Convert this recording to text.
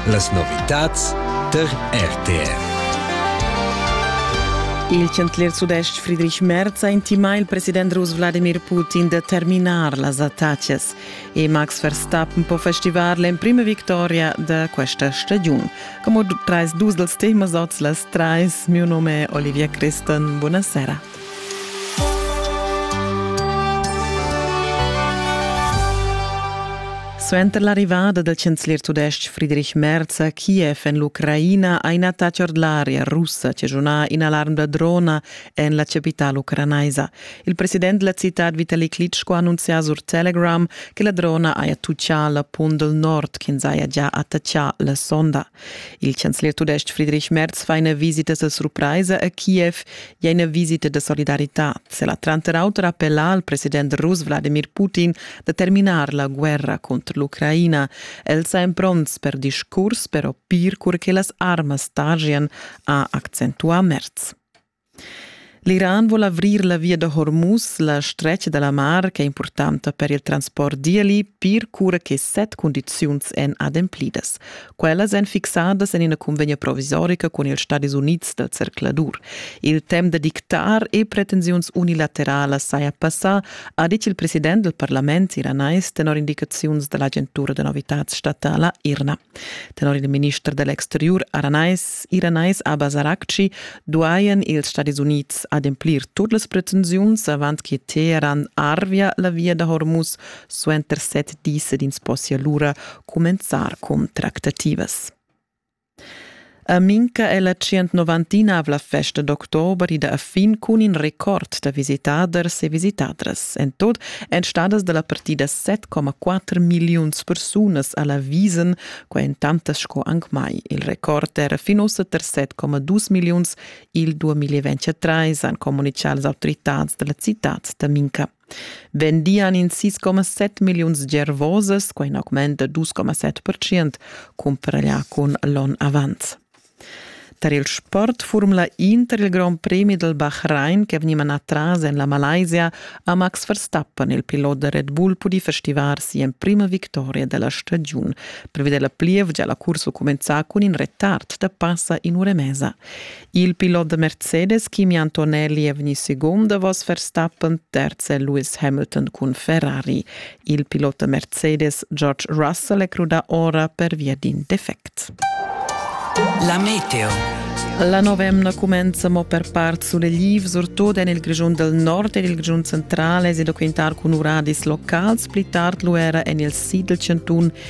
Las novitads der RTR. Il chancelier sudest Friedrich Merz ha intimà il president rus Wladimir Putin da terminar las attacas e Max Verstappen po festivar l'emprima victoria da questa stagiun. Como trais dus dels temas oz las trais, mio nome è Olivia Criston. Buonasera. Suenter l'arrivada dal chanzler tudestg Friedrich Merz a Kiev en l'Ucraina ha ina attacca ord l'aria russa che sunà in'alarm da drona en la chapitala ucranaisa. Il president della città Vitali Klitschko ha annunziato sur Telegram che la drona haja tuccà l'appun del nord ch'ins haja già attaccà la sonda. Il chancelier tudestg Friedrich Merz fa ina visita da surpraisa a Kiev e ina visita da solidarità. El ha tranter auter appellà al president rus Vladimir Putin da terminar la guerra contro l'Ucraina. El sa pronts per discurs per opir cur che las armas targian, ha accentuà Merz. L'Iran vul avrir la via da Hormuz, la stretga da la mar ch'è impurtanta per il transport d'ieli, pir cura che set cundiziuns èn ademplidas. Quellas èn fixadas en ina cunvegna provisorica cun ils Stadis Unids dal zercladur. Il temp da dictar e pretensiuns unilateralas saja passà, ha ditg il president dal parlament iranais tenor indicaziuns da l'agentura da novitads statala IRNA. Tenor il minister da l'exteriur aranais iranais Abbas Araghchi duajan ils Stadis Unids ademplir tut las pretensiuns avant che Teheran arvia la via da Hormuz suenter set dis ed ins possia lura cumenzar cun tractativas. A Minca è la 199-avla festa d'october ida a fin cun in record da visitaders e visitadras. En tot èn stadas da la partida 7,4 milliuns persunas a la Wiesen, qua en tantas sco anc mai. Il record era fin ussa ter 7,2 milliuns il 2023, han communitgà las autoritads da la citad da Minca. vendian in 6,7 milliuns gervosas, quai in augment da 2,7%, cumpra ella cun l'on avant. Tar il sport formula Inter il Grand Premi del Bahrain che veniva atras en la Malaysia ha Max Verstappen, il pilot da Red Bull, pudì festivar sia prima victoria della stagiun. Prevede la plievgia la cursa cumenza cun in retard da passa in ura e mezza. Il pilot da Mercedes Kimi Antonelli è vegnì segund davos Verstappen, terz è Lewis Hamilton cun Ferrari. Il pilot da Mercedes George Russell è crudà ora pervia d'in defect. La meteo. La nova emna cumenza mo per part sulle Live, surtut en il Grischun del Nord ed il Grischun centrale, è da quintar cun uradis locals, pli tard lu era en il Siedelcentun